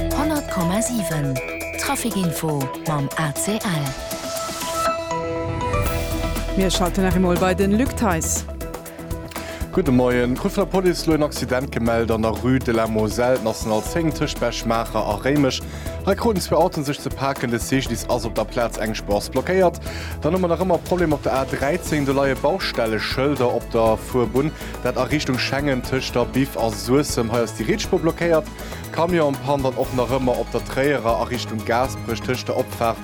100,7 Trafic Info mam ACL. Mir schalten nach eemol bei de Luc Theis. Gudde Moien. D'Crew vun der Police elo en Accident gemellt an der Rue de la Moselle, National 10, tëscht Bech-Maacher a Réimech. Hei kruten zwee Autoen sech ze paken. De Cyclist ass op der Plaz engspuergs blockéiert. Dann hu mer nach ëmmer e Problem op der A 13. Do leie Baustelleschëlder op der Fuerbunn. Dat a Richtung Schengen tëscht der Biff a Suessem. Hei ass déi Rietspuer blockéiert. Camionspann dann och nach ëmmer op der Tréierer a Richtung Gaasperech tëscht der Opfaart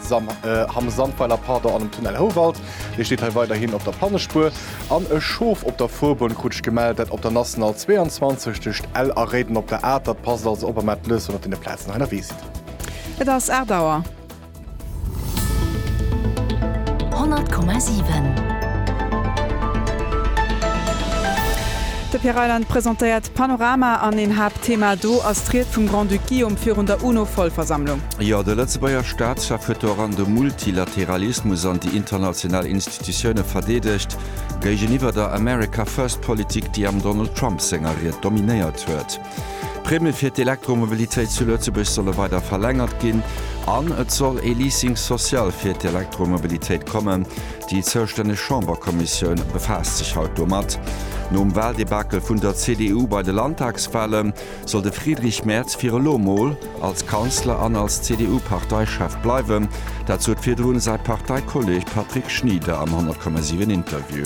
Hamm Sandweiler pardon an dem Tunnel Houwald. Dee steet hei weiderhin op der Pannespuer. An e Schof op der Fuerbunn krut ech gemellt, dat op der National 22 tëscht Ell a Réiden op der Atert. Passt also op a mellt lech, wann der op deene Plazen hei ënnerwee sidd. Et ass 8 Auer. De Pierre Reyland presentéiert d'Panorama an een Haaptthema do ass d'Ried vum Grand-Duc Guillaume virun der UNO-Vollversammlung. Jo, de Lëtzebuerger Staatschef huet do eran de Multilateralismus an déi international Institutioune verdeedegt, géigeniwwer der America-First-Politik, déi am Donald Trump senger Ried dominéiert huet. D'Primmen fir d'Elektromobilitéit zu Lëtzebuerg solle weider verlängert ginn an et soll ee Leasing social fir d'Elektromobilitéit kommen. Déi zoustänneg Chamberkommissioun befaasst sech haut domat. Nom Wahldebakel vun der CDU bei de Landtagswahle soll de Friedrich Merz fir elo mol als Kanzler an als CDU-Parteichef bleiwen. Dat sot virdrun säi Parteikolleeg Patrick Schnieder am 100,7 Interview.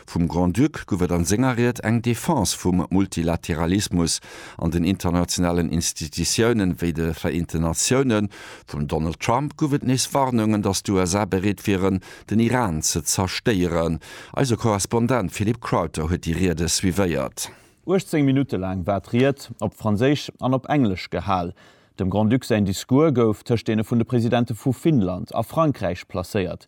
Vum Grand-Duc gouf et an senger Ried eng Defense vum Multilateralismus an den internationalen Institutiounen, wéi de Vereenten Natiounen. Vum Donald Trump gouf et nees Warnungen, datt d'USA bereet wieren, den Iran ze zerstéieren. Eise Korrespondent Philippe Crowther huet déi Riede suivéiert. 18 Minutte laang war d'Ried op Franséisch an op Englesch gehal. Dem Grand-Duc säin Discours gouf tëscht deene vun de Presidente vu Finnland a Frankräich placéiert.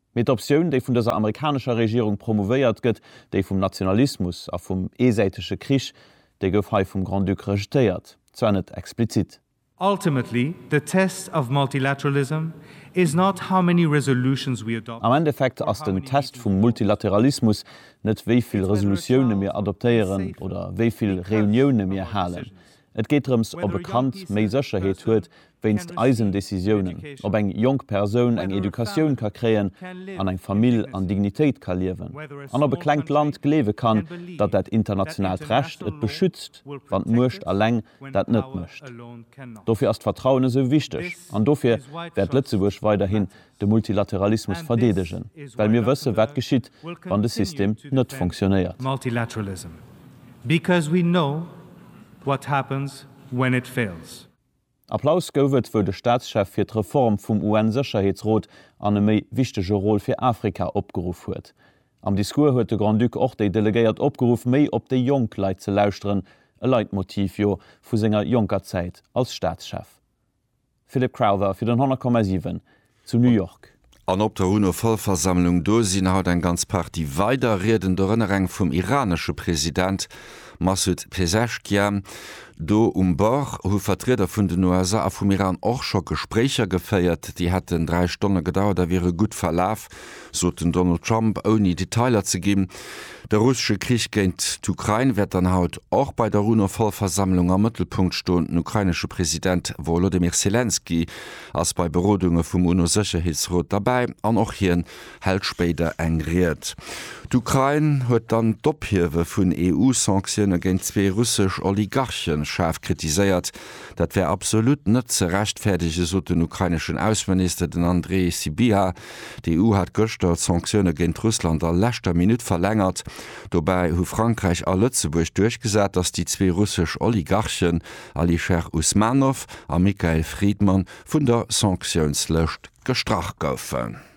Mee d'Optioun, déi vun dëser amerikanescher Regierung promouvéiert gëtt, déi vum Nationalismus a vum eesäitege Krich, déi gouf hei vum Grand-Duc rejetéiert, zwar net explizit. Ultimately, the test of multilateralism is not how many resolutions we Am adopt Endeffekt or ass how den many Test vum meetings we hold. Multilateralismus net wéi vill Resolutioune mir adoptéieren oder wéi vill Reunioune mir halen. Et geet drëms, ob e Kand méi Sécherheet huet wéinst eisen Decisiounen, ob eng jonk Persoun eng Educatioun ka kréien an eng Famill an Dignitéit ka liewen an ob e klengt Land gleewe kann, datt dat internationaalt Recht et beschützt, wann d'Muecht eleng dat net mécht. Dofir ass d'Vertrauen esou wichteg an dofir wäert Lëtzebuerg weiderhin de Multilateralismus verdeedegen, well mir wëssen, wat geschitt, wann de System net funktionéiert. Applaus gouf et, wou de Staatschef fir d'Reform vum UN-Sécherheetsrot an e méi wichtege Rôle fir Afrika opgeruff huet. Am Discours huet de Grand-Duc och déi Delegéiert opgeruff, méi op déi jonk Leit ze lauschteren, e Leitmotiv, jo, vu senger jonker Zäit als Staatschef. Philip Crowther fir den 100,7 zu New York. An op der UNO-Vollversammlung do sinn haut eng ganz Partie weider Rieden, dorënner eng vum iranesche President Massoud Pezeshkian. Do um Bord hu Vertrieder vun den USA a vum Iran och scho Gespréicher geféiert. Déi hätten dräi Stonne gedauert a wiere gutt verlaf. sot den Donald Trump, ouni Detailer ze ginn. De russesche Krich géint d'Ukrain wäert dann haut och bei der UNO-Vollversammlung am Mëttelpunkt stoen. Den ukrainesche President Wolodymyr Selenskyj ass bei Berodunge vum UNO-Sécherheetsrot derbäi an och hien hält spéider eng Ried. D'Ukrain huet dann d'Ophiewe vun EU-Sanktioune géint zwee russesch Oligarche schaarf kritiséiert. Dat wär absolut net ze rechtfäerdege, sot den ukraineschen Ausseminister, den Andrii Sybiha. D'EU hat gëschter d'Sanktioune géint Russland a leschter Minutt verlängert. Dobäi hu Frankräich a Lëtzebuerg duerchgesat, datt déi zwee russesch Oligarchen Alisher Usmanov a Mikhail Fridman vun der Sanktiounslëscht gestrach goufen.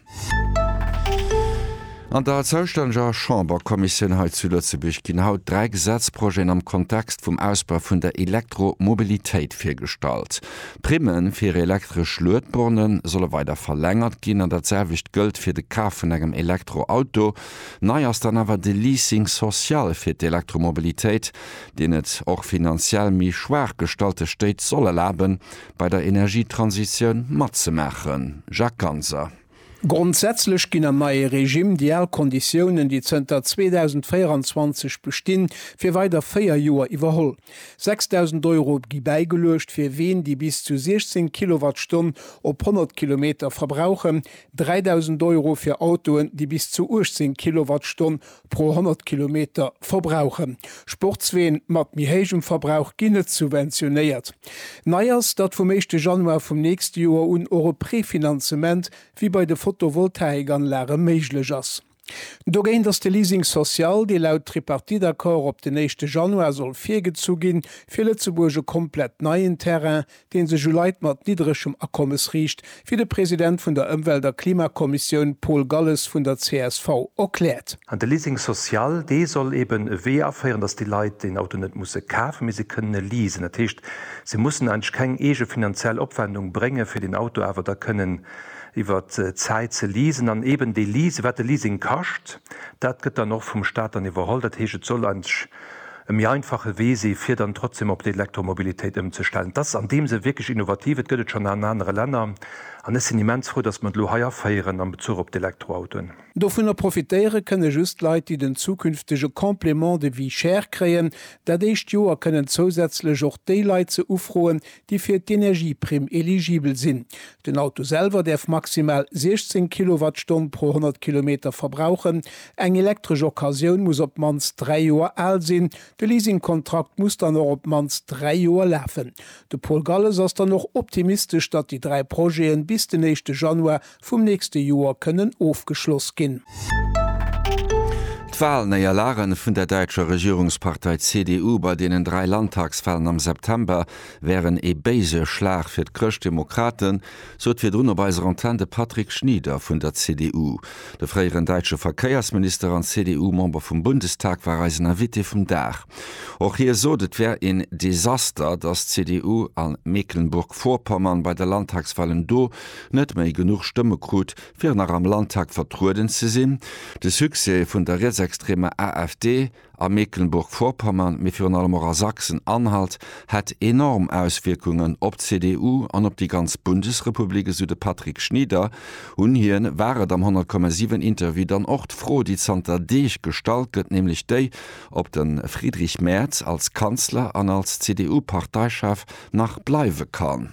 An der zoustänneger Chamberkommissioun hei zu Lëtzebuerg ginn haut dräi Gesetzprojeten am Kontext vum Ausbau vun der Elektromobilitéit virgestallt. D'Primme fir elektresch Luedborne solle weider verlängert ginn an dat selwecht gëllt fir de Kaf vun engem Elektroauto. Nei ass dann awer de Leasing social fir d'Elektromobilitéit, deen et och finanziell méi schwaach gestallte Stéit soll erlaben, bei der Energietransitioun matzemaachen? Jacques Ganser. Grondsätzlech ginn am neie Regime déi al Konditiounen, déi zënter 2024 bestinn, fir weider véier Joer iwwerholl. 6.000 Euro gi bäigeluecht fir Ween, déi bis zu 16 Kilowattstonn op 100 Kilometer verbrauchen, 3.000 Euro fir Autoen, déi bis zu 18 Kilowattstonn pro 100 Kilometer verbrauchen. Sportsween mat méi héijem Verbrauch ginn net subventionéiert. Nei ass, datt vum éischte Januar vum nächste Joer un och e Prefinanzement wéi bei de Photovoltaik-Anlage méiglech ass. Dogéint ass de Leasing social, dee laut Tripartite-Accord op den éischte Januar soll virgezu ginn, fir Lëtzebuerg e komplett neien Terrain, dee sech u Leit mat niddregem Akommes riicht, wéi de President vun der Ëmwelt a Klimakommissioun Paul Galles vun der csv erkläert. An de Leasing social, dee soll eeben e Wee aféieren, datt déi Leit den Auto net musse kafen, mee se kënnen e leasen. Dat heescht, se mussen eigentlech keng eege finanziell Opwendung bréngen, fir den Auto awer da kënnen iwwer d'Zäit ze leasen. An eeben dee Leasing, wat de Leasing kascht, dat gëtt dann och vum Staat dann iwwerholl. Dat heescht, et soll eigentlech e méi einfache Wee si fir dann trotzdeem op d'Elektromobilitéit ëmzestellen. Et ass an deem Sënn wierklech innovativ. Et gëtt et schonn an anere Länner an ech sinn immens frou, datt mer et elo hei aféieren am Bezuch op d'Elektroautoen. Dovunner profitéiere kënne just Leit, déi den zukünftege Complément de vie cher kréien. Dat éischt Joer kënnen zousätzlech och déi Leit se ufroen, déi fir d'Energieprimm eligibel sinn. Den Auto selwer däerf maximal 16 Kilowattstonn pro 100 Kilometer verbrauchen. Eng elektresch Occasioun muss op d'mannst dräi Joer al sinn. De Leasingkontrakt muss dann och op d'mannst dräi Joer lafen. De Paul Galles ass dann och optimistesch, datt déi dräi Projete bis den éischte Januar vum nächste Joer kënnen ofgeschloss ginn. D'Walnéierlage vun der däitscher Regierungspartei CDU bei deenen dräi Landtagswalen am September wären ee béise Schlag fir d'Chrëschtdemokraten, sot virdrun op eiser Antenn de Patrick Schnieder vun der CDU. De fréieren däitsche Verkéiersminister an CDU-Member vum Bundestag war eisen Invité vum Dag. Och hie sot, et wär een Desaster, datt d'CDU a Mecklenburg-Vorpommern bei de Landtagswalen do net méi genuch Stëmme krut, fir nach am Landtag vertrueden ze sinn, de Succès vun der rietsextremer AfD a Mecklenburg-Vorpommern, mee virun allem och a Sachsen-Anhalt, hätt enorm Auswierkungen op d'CDU an op déi ganz Bundesrepublik, esou de Patrick Schnieder. Un hien war et am 100,7 Interview dann och d'Fro, déi zanter Deeg gestallt gëtt, nämlech déi, ob de Friedrich Merz als Kanzler an als CDU-Parteichef nach bleiwe kann.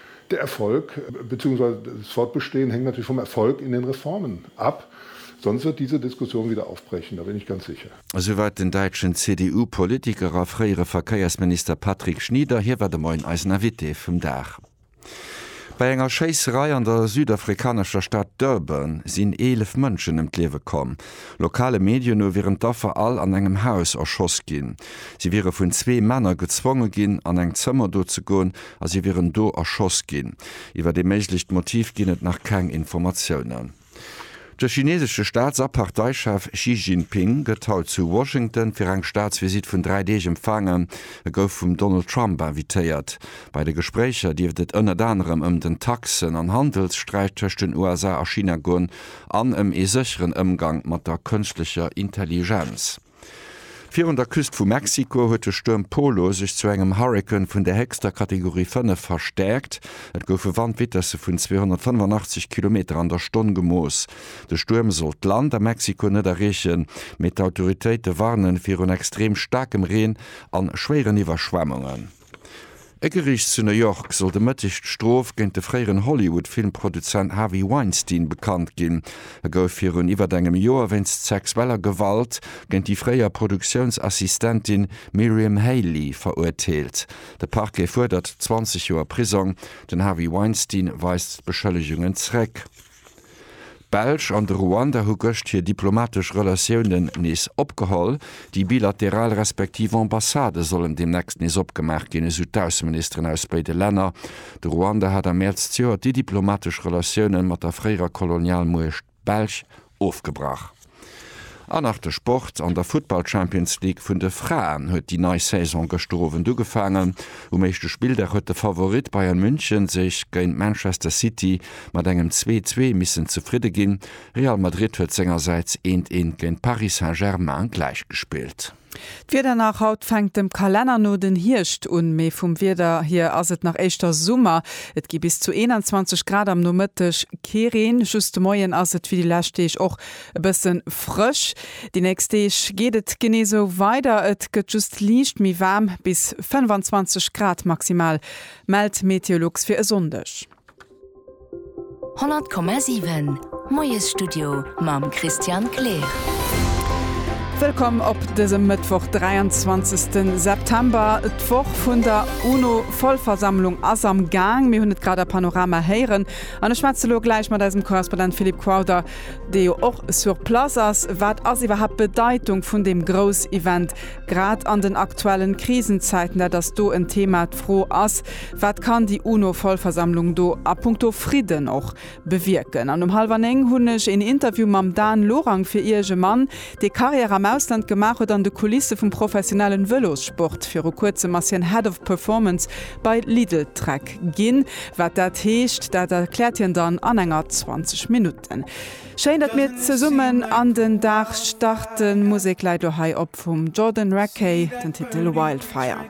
Der Erfolg beziehungsweise das Fortbestehen hängt natürlich vom Erfolg in den Reformen ab, sonst wird diese Diskussion wieder aufbrechen, da bin ich ganz sicher. Esouweit den däitschen CDU-Politiker a fréiere Verkéiersminister Patrick Schnieder. Hie war de Moien eisen Invité vum Dag. Bei enger Schéisserei an der südafrikanescher Stad Durban sinn 11 Mënschen ëm d'Liewe komm. Lokale Medien no wieren d'Affer all an engem Haus erschoss ginn. Si wiere vun zwee Männer gezwonge ginn, an eng Zëmmer do ze goen, a si wieren do erschoss ginn. Iwwer ee méiglecht Motiv ginn et nach keng Informatiounen. De chineesesche Staats a Parteichef Xi Jinping gëtt haut zu Washington fir eng Staatsvisitt vun dräi Deeg empfaangen. E gouf vum Donald Trump invitéiert. Bei de Gespréicher dierft et ënnert anerem ëm den Taxen an Handelssträit tëscht den USA a China goen an ëm ee sécheren Ëmgang mat der Kënschtlecher Intelligenz. Virun der Küst vu Mexiko huet de Stuerm Polo sech zu engem Hurrikan vun der héchster Kategorie 5 verstäerkt. Et goufe Wandvitesse vun 285 Kilometer an der Stonn gemooss. De Stuerm sollt d'Land a Mexiko net erreechen, mee d'Autoritéite warnen virun extrem staarkem Reen an schwéieren Iwwerschwemmungen. E Geriicht zu New York soll de Mëtteg d'Strof géint de fréieren Hollywood-Filmproduzent Harvey Weinstein bekannt ginn. E gouf virun iwwert engem Joer wéinst sexueller Gewalt géint déi fréier Produktiounsassistentin Miriam Haley verurteelt. De Parquet fuerdert 20 Joer Prisong. Den Harvey Weinstein weist d'Beschëllegungen zréck. D'Belsch an de Ruanda hu gëscht hir diplomatesch Relatiounen nees opgeholl. Déi bilateral respektiv Ambassadë sollen deemnächst nees opgemaach ginn, esou d'Ausseministeren aus béide Länner. De Ruanda hat am Mäerz zejoert déi diplomatesch Relatioune mat der fréierer Kolonialmuecht Belsch ofgebrach. An nach de Sport, An der Futtball-Champions League vun de Fraen huet déi nei Saison gëschter Owend ugefaangen. Um éischte Spilldag huet de Favorit Bayern München sech géint Manchester City mat engem 2-2 missen zefridde ginn. Real Madrid huet sengersäits eent eent géint Paris Saint-Germain gläichgespillt. D'Wieder nach, Haut fänkt dem Kalenner no den Hierscht un, mee vum Wieder hier ass et nach éischter Summer. Et gi bis zu 21 Grad, am Nomëtteg kee Reen, just de Moien ass et wéi déi lescht Deeg och e bësse frësch. Déi nächst Deeg geet et genee sou weider, et gëtt just liicht méi waarm, bis 25 Grad maximal mellt Meteolux fir e Sonndeg. 100,7 Moiesstudio mam Christian Kleer. Wëllkomm op dësem Mëttwoch 23 September. D'Woch vun der UNO-Vollversammlung ass am Gaang. Mir hunn et grad a Panorama héieren an ech schwätze lo gläich mat eisem Korrespondent Philippe Crowther, dee jo och sur place ass. Wat ass iwwerhaapt d'Bedeitung vun deem Groussevent, grad an den aktuellen Krisenzäiten? Dat ass do en Thema. D'Fro ass, Wat kann déi UNO-Vollversammlung do a Punkto Fridden och bewierken? An um hallwer néng hunn ech een Interview mam Dan Lorang fir Iech, e Mann, dee Karriär am Ausland gemaach huet an de Kulisse vum professionellen Vëlossport. Viru kuerzem ass hien Head of Performance bei Lidl Trek ginn. Wat dat heescht, dat erkläert hien dann an enger 20 Minutten. Schéin, datt mir zesummen an den Dag starten. D'Musek läit elo hei op vum Jordan Rakei, den Titel Wildfire.